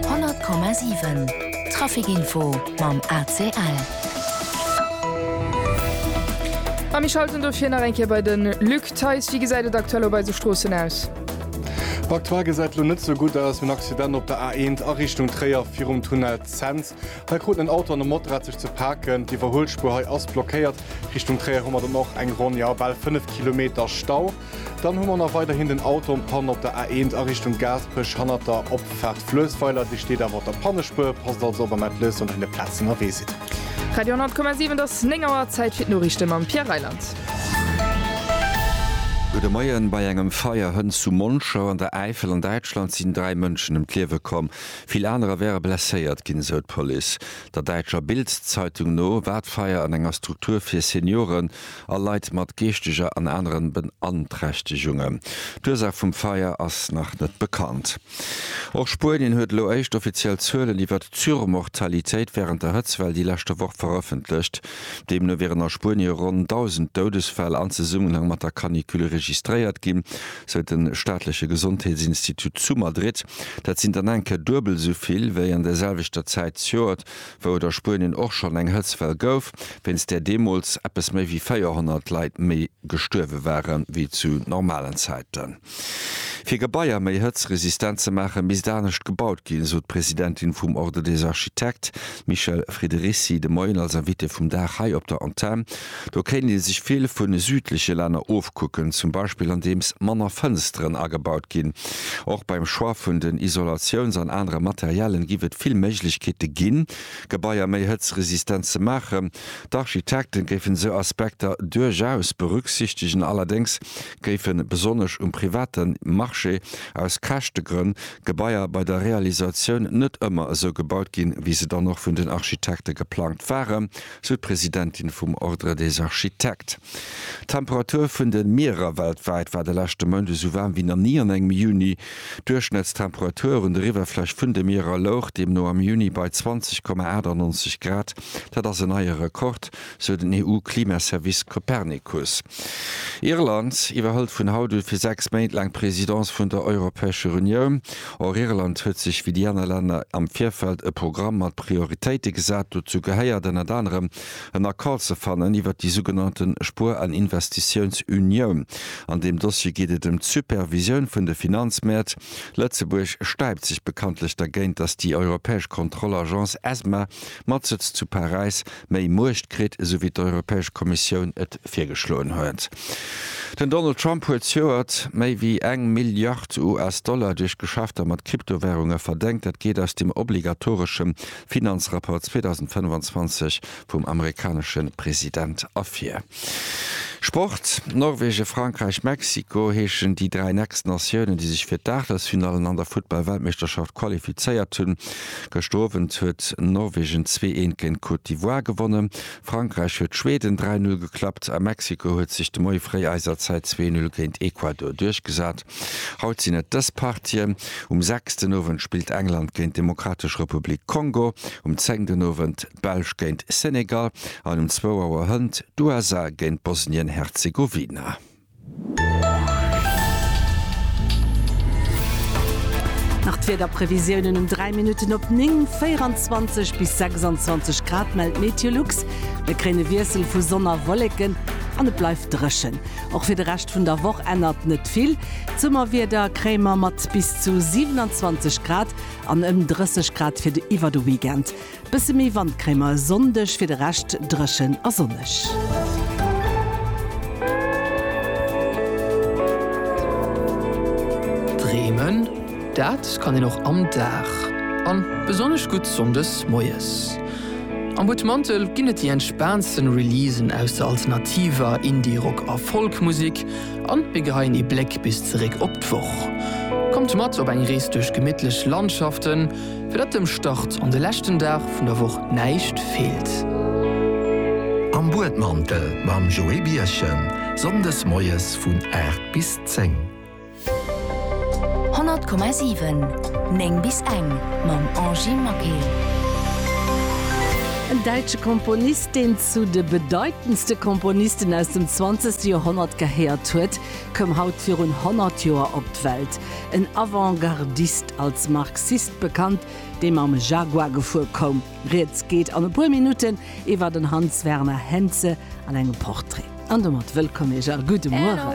100,7 Trafic Info mam ACL. A mir schalten dofir nach eng Kéier bei de Luc Theis. Wéi gesäit et aktuell op eise Stroossen aus? Aktuell gesäit lo net sou gutt aus. En Accident op der A1 a Richtung Tréier virum Tunnel Cents. Hei kruten en Auto an e Motorrad sech ze paken. D'Iwwerhuelspuer hei ass blockéiert. Richtung Tréier hu mer dann och eng Ronn, jo bal 5 Kilometer Stau. Dann hu mer nach weiderhin den Auto en panne op der A1 a Richtung Gaasperech hannert der Opfaart Fluessweiler. Dir steet awer op der Pannespur, passt also op a mellt lech, wann dir un der Plaz ënnerwee sidd. Radio 100,7 et ass 9 Auer, Zäit fir d'Noriichte mam Pierre Reyland. Gudde Moien. Bei engem Feier Hënn zu Monschau an der Äifel an Däitschland sinn dräi Mënschen ëm d'Liewe komm. Vill anerer wäre blesséiert ginn, esou d'Police. Der däitscher Bild-Zeitung no war d'Feier an enger Struktur fir Senioren. a Leit mat geeschteger an aneren Beanträchtegungen. D'Ursaach vum Feier ass nach net bekannt. Och Spuenien huet elo éischt offiziell Zuelen iwwert d'Surmortalitéit wärend der Hëtztwell déi leschte Woch verëffentlecht. Deemno wieren a Spuenie ronn 1.000 Doudesfäll an Zesummenhang mat der Canicule registréiert ginn, sou de staatleche Gesondheetsinstitut zu Madrid. Dat sinn dann enke duebel esou vill wéi an der selwechter Zäit d'Joert wou et a Spuenien och schonn eng Hëtztwell gouf, wéinst där deemools eppes méi wéi 400 Leit méi gestuerwe ware wéi zu normalen Zäiten. Fir Gebaier méi hëtztresistent ze maachen, misst anescht gebaut ginn, esou d'Presidentin vum Ordre des architectes, d'Michèle Friederici, de Moien als Invitée vum Dag hei op der Antenn. Do kéint ee sech vill vu südleche Länner ofkucken, zum Beispill andeems manner Fënsteren agebaut ginn. Och beim Choix vun den Isolatiouns an anere Materialen giff et vill Méiglechkeete ginn, Gebaier méi hëtzresistent ze maachen. D'Architekte géifen sou Aspekter duerchaus berücksichtegen, allerdéngs géife besonnesch um private Marché aus Käschtegrënn Gebaier bei der Realisatioun net ëmmer esou gebaut ginn, wéi se dann och vun den Architekte geplangt waren. sou d'Presidentin vum Ordre des Architectes. D'Temperatur vun de Mierer weltwäit war de leschte Mount esou waarm wéi nach ni an engem Juni. D'Duerchschnëttstemperatur un der Iwwerfläch vun de Mierer louch deemno am Juni bei 20,98 Grad. Dat ass en neie Rekord, sou den EU-Klimaservice Copernicus. Irland iwwerhëlt vun haut u fir sechs Méint laang d'Presidence vun der Europäescher Unioun. Och Irland huet sech wéi déi aner Länner am Virfeld e Programm mat Prioritéite gesat. Dozou gehéiert ënnert anerem en Accord ze fannen iwwert déi sougenannte Spuer an Investitiounsunioun. An deem Dossier geet et ëm d'Supervisioun vun de Finanzmäert. Lëtzebuerg stäipt sech bekanntlech dergéint, datt déi europäesch Kontrollagence ESMA Mat Sëtz zu Paräis méi Muecht kritt, esou wéi d'Europäesch Kommissioun et virgeschloen huet. Den Donald Trump huet zejoert méi wéi eng Milliard US-Dollar duerch Geschäfter mat Kryptowärunge verdengt. Dat geet aus dem obligatoreschem Finanzrapport 2025 vum amerikanesche President ervir. Sport, Norwegen, Frankräich, Mexiko heeschen déi dräi nächst Natiounen, déi sech fir d'Aachtelsfinallen an der Futtball-Weltmeeschterschaft qualifizéiert hunn. Gëschter Owend huet Norwegen zwee eent géint d'Côte d'Ivoire gewonnen, Frankräich huet Schweden dräi Null geklappt a Mexiko huet sech de Moie fréi eiser Zäit zwee Null géint Ecuador duerchgesat. Haut sinn et dës Partien, Um sechs den Owend spillt England géint d'Demokratesch Republik Kongo, um zéng den Owend d'Belsch géint Senegal an um zwou Auer Hënt d'USA géint Bosnien-Herzegowina. Nach d'Wiederprevisiounen um 3 Minutten op 9, 24 bis 26 Grad mellt Meteolux. Mir kréien e Wiessel vu Sonn a Wolleken an et bleift dréchen. Och fir de Rescht vun der Woch ännert net vill. D'Summerwieder kréie mer mat bis zu 27 Grad an ëm 30 Grad fir de iwwer de Weekend. Bësse méi Wand kréie mer e Sonndeg, fir de Rescht dréchen a sonneg. Dreemen, dat kann een och am Dag, a besonnesch gutt sonndes moies. Am Buttmantel ginn et déi entspaantsten Releasen aus der alternativer, Indie, Rock a Folk-Musek a mir geheien ee Bléck bis zeréck op d'Woch. Kommt mat op eng Rees duerch gemittlech Landschaften. Fir datt dem Start an de leschten Dag vun der Woch näischt feelt. Am Buedmantel mam Joé Birchen, Sonndes moies vun 8 bis 10. 100,7, 9 bis eng, mam Angie Maquet. En däitsche Komponist, deen zu de bedeitendste Komponisten aus dem 20. Joerhonnert gehéiert huet, koum haut virun 100 Joer op d'Welt. en Avant-gardist, als Marxist bekannt, dee mam Jaguar gefuer koum. Rieds geet an e puer Minutten iwwer den Hans Werner Henze an engem Portrait. An domat wëllkomm Iech a gudde Mueren.